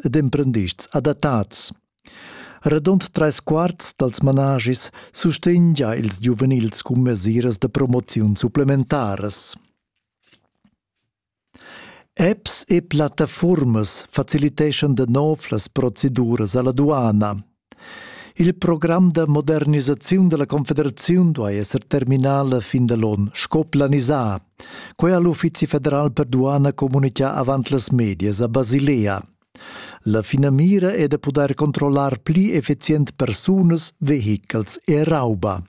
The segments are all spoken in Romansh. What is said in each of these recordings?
ed emprendists adattads. Radund trais quarts dals managis sustegna ils giuvenils cun mesiras da promoziun supplementaras. Apps e plattafuormas faciliteschan da nov las proceduras alla duana. Il program da modernisaziun dalla Confederaziun duai esser terminà la fin da l'on, sco planisà. Quei ha l'Uffizi federal per duana communicà avant las medias a Basilea. La finamira è da pudair controllar pli effizient persunas, vehichels e rauba.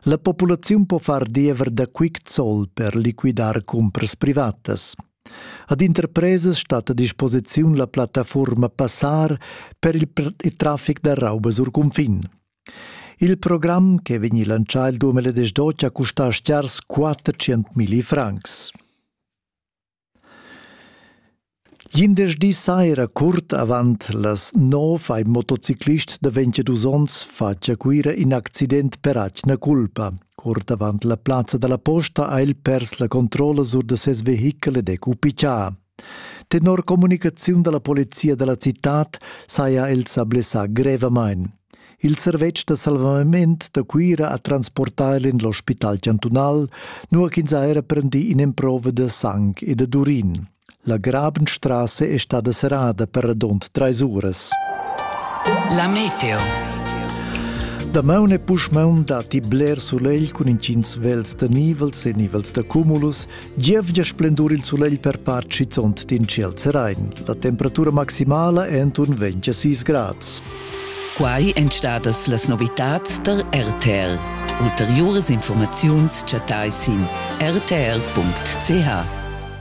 La populaziun po far diever da quick zoll per liquidar cumpras privatas. Ad interpresas stat a disposiziun la plattafuorma Passar per il, il traffic da raubas sur cunfin. Il program, che vegni lancià il 2018, ha custà stiars 400.000 francs. Glindesdi saira, curt avant las nov, ha in motociclist da 22 onns fatg a Cuira in accident per atgna culpa. Curt avant la plazza dalla posta ha el pers la controlla sur da ses vehichel ed è cupichà. Tenor communicaziun dalla polizia dalla citad saja el sa blessà grevamain. Il servetsch da salvament da Cuira ha transportà el en l'ospital chantunal, nua ch'ins ha era prendì in'emprova da sang e da urin. La Grabenstrasse è stada serrada per radund trais uras. La meteo. Damaun e puschmaun datti bler sulegl cun intgins vels da nivels e nivels da cumulus. Gievgia splendur il sulegl per part schizunt d'in ciel serain. La temperatura maximala è enturn 26 grads. Quai èn stadas las novitads der RTL. Ulteriuras informaziuns chattai sin rtl.ch.